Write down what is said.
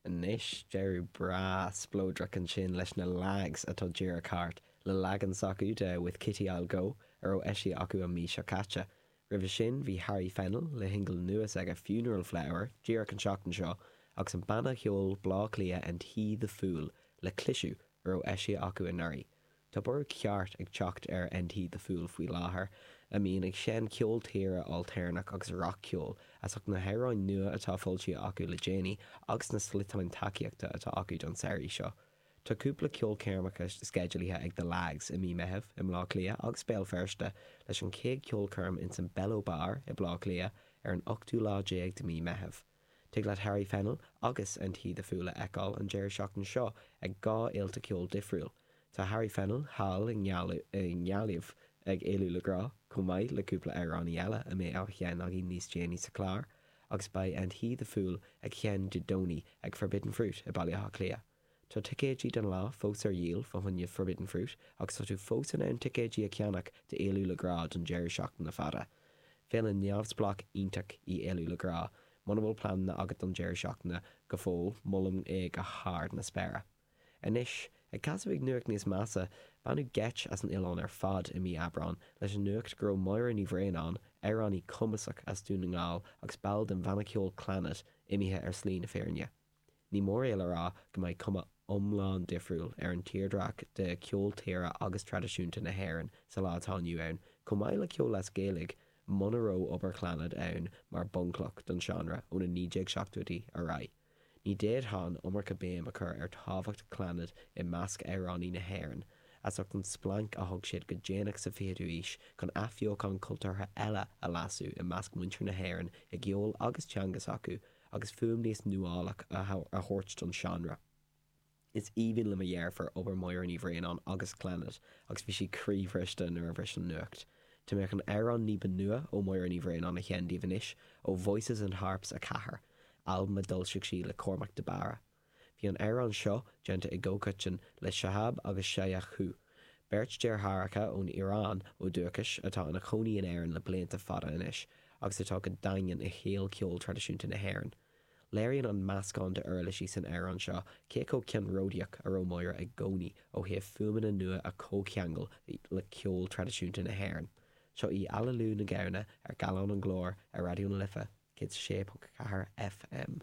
Anois, deireadh breá spleodrach ansin leis na Lags atá díreach thart, le leagan s'acu de 'With Kitty I'll Go' a raibh eisithe acu an mhí seo caite. Roimhe sin bhí Harry Fennell le shingil nua s'aige 'Funeral Flower' díreach an tseachtain seo agus an banna cheoil Bleá Cliath 'And He the Fool' le Cliseadh, a raibh eisithe acu anuraidh. Tá borradh ceart ag teacht ar And He the Fool faoi láthair, a mbíonn ag seinn ceol tíre ailtéarnach agus rac-cheol, as ucht na hamhráin nua atá foilsithe acu le déanaí agus na sliotáin tacaíochta atá acu don samhraidh seo. Tá cúpla ceolchoirmeacha sceidealaithe ag The Lags i mí Meitheamh i mBleá Cliath agus Béal Feirste, leis an chéad cheolchoirm insan Bello Bar i Bleá Cliath ar an ochtú lá déag de mí Meitheamh. Tig leat Harry Fennell agus and He the Fool a fheiceáil an deireadh seachtaine seo ag dhá fhéilte ceoil difriúil. Tá Harry Fennell thall i nGaillimh ag Éalú le Grá, chomh maith le cúpla amhránaí eile a mbeidh á sheinn againn níos déanaí sa chlár, agus beidh and He the Fool ag sheinn Dé Domhnaigh ag Forbidden Fruit i Baile Átha Cliath. Tá ticéidí don lá fós ar dhíol fá choinne Forbidden Fruit agus tá tú fós in ann ticéidí a cheannach d'Éalú le Grá don deireadh seachtaine fada. Féile neamhspleách iontach í Éalú le Grá. Muna bhfuil pleananna agat don deireadh seachtaine go fóill, molaim é go hard na spéire. Anois, ag casadh chuig nuacht níos measa, baineadh geit as an oileán ar fad i mí Aibreán leis an nuacht go raibh Máire Ní Bhraonáin, amhránaí cumasach as Dún na nGall agus ball den bhanna ceoil Clannad, imithe ar shlí na fírinne. Ní móráil a rá go mbeidh cuma iomlán difriúil ar an tírdhreach de cheol tíre agus traidisiúnta na hÉireann sa lá atá inniu ann, chomh maith le ceol as Gaeilge, muna raibh obair Chlannad ann mar bhunchloch don seánra ó na 1970idí ar aghaidh. Ní d'fhéadfá an iomarca béim a chur ar thábhacht Chlannad i measc amhránaí na hÉireann, as ucht an splanc a thug siad go déanach sa 20ú aois chun athbheochán cultúrtha eile a lasadh i measc muintir na hÉireann i gceol agus teanga s'acu, agus fuaim níos nuálach a thabhairt don seánra. Is aoibhinn le mo dheirfiúr obair Mháire Ní Bhraonáin agus Clannad agus bhí sí croíbhriste nuair a bhris an nuacht. Tá mé chun amhrán ní ba nua ó Mháire Ní Bhraonáin a sheinn daoibh anois, ó Voices and Harps 4, albam a d'fhoilsigh sí le Cormac de Barra. Bhí an amhrán seo déanta i gcomhchoiteann le Shahab agus Shayan Coohe, beirt deartháireacha ón Iaráin ó dhúchais atá ina chónaí in Éirinn le blianta fada anois agus atá go daingean i shaol cheol traidisiúnta na hÉireann. Léiríonn an meascán d'uirlisí san amhrán seo cé chomh ceannródaíoch a raibh Máire i gcónaí ó thaobh fuaimeanna nua a chomhcheangal le ceol traidisiúnta na hÉireann. Seo í Aililiú na Gamhna ar Gallán an Ghlóir ar Raidió na Life 106.4 FM.